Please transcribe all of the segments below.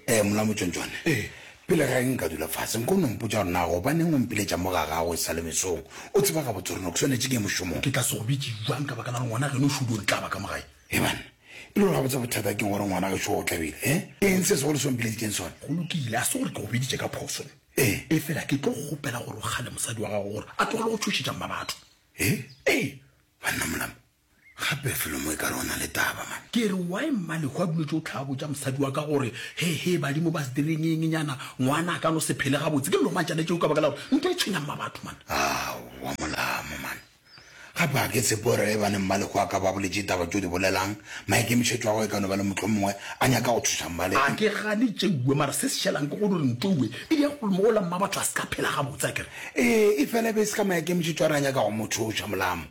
ee eh, molamo tšontšone eh. pele ga eng ka dula fase nko o nompotsa gore na gobaneng o mpiletša mo ga gago e sa le mesong o tseba ga botsoreno ke swanetse ke mošomong ke tla se go bitse jwang ka baka la ngwana geno šudo di tla baka mo gae ebane e le gore ga botsa bothata keng gore ngwana ge seo o tlabile e eh? eng se segolo se ompileditseng sone go lokile a se gore ke go biditše ka phoso ee e fela ke tlo gopela gore o gale mosadi wa gago gore a tlogele go tshošetšang ba batho ee ee banna molamo Gape felo mo e kare o na le taba man. Ke re why Mmalego a duletše go hlaa botša mosadi wa ka gore he he badimo ba se direng eng nyana, ngwana a ka no se phele gabotse. Ke llo mantšana tšeo ka baka la gore ntwa e tshwenya mma batho man. Aowa molamo man. Gape ga ke tshepe gore ge e ba ne Mmalego a ka ba boletše ditaba tše o di bolelang, maikemišetšo a gagwe e ka no ba le mohlomongwe a nyaka go thuša Mmalego. A ke gane tšeue mara se se šelang ke gore ntwaue e ya go mola mma batho a se ka phela gabotse akere. Ee e fela e be e se ka maikemišetšo a re a nyaka go mo thuša molamo.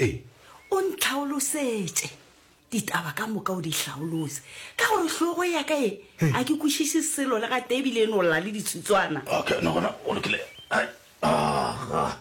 Ee. O ntlhaolosetše ditaba ka moka o di hlaolose, ka gore hlogo ya ka e, a ke kwešiše selo le gatee ebile e no lla le ditsutswana. Okay, no gona o lokile. Ai, aga.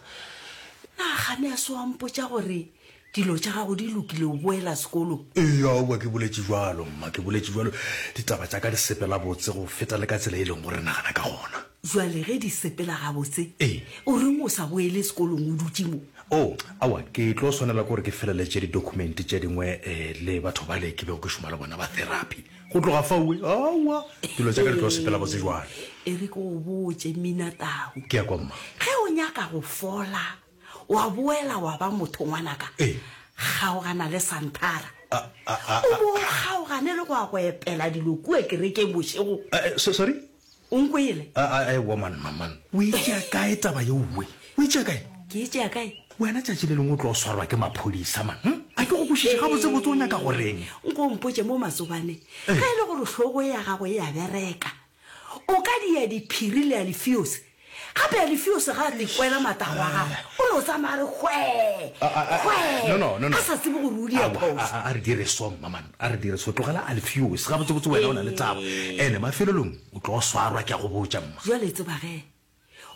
Na ga ne a se wa mpotša gore dilo tša gago di lokile o boela sekolo? Ee, aowa, ke boletše bjalo, mma, ke boletše bjalo. Ditaba tša ka di sepela botse go feta le ka tsela e leng gore re nagana ka gona. Bjale ge di sepela gabotse, Ee. o reng o sa boele sekolong o dutše mo? Oo, aowa, ke tlo swanela ke gore ke feleletše didokhumenti tše dingwe eh, le batho bale ke bego ke šoma le bona ba therapy. Go tloga faue, aowa, dilo tša ka di tlo sepela botse bjale. E re ke go botše, Mminatau. Ke ya kwa, mma. Ge o nyaka go fola, wa boela wa ba motho, ngwanaka, Ee. kgaogana le Santhara. A, a, a, a. O bo o kgaogane le go ya go epela dilo kua kerekeng bošego. Eh, eh, so, sorry? O nkwele? A, a, aewa, man, man, man. O e tšea kae taba ye uwe? O e tšea kae? Ke e tšea kae? Wena tšatši le lengwe o tlo swarwa ke maphodisa, man. Hm? A ke go kwešiše Ee, gabotsebotse o nyaka go reng. nko o mpotše mo matsobane. Ee. Ge e le gore hlogo ya gago e a bereka, o ka dia diphiri le alifiosi. Gape Alifiose ga a likwela matago a gagwe, o no tsamaya a re hwee, A- a- a- hwee, no, no, no, no. a sa tsebe gore o di Aowa, a, ephosa. a, a re dire so mmaman a re dire so tlogela alfios gabotsebotse wena o na le taba Ee. ene mafelelong o tlo swarwa ke a go botša mma Bjale tseba ge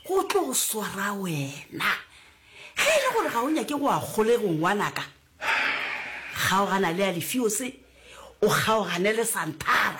go tlo swara wena. Ge e le gore ga o nyake go a kgolego ngwanaka, kgaogana le Alifiose, o kgaogane le Santara.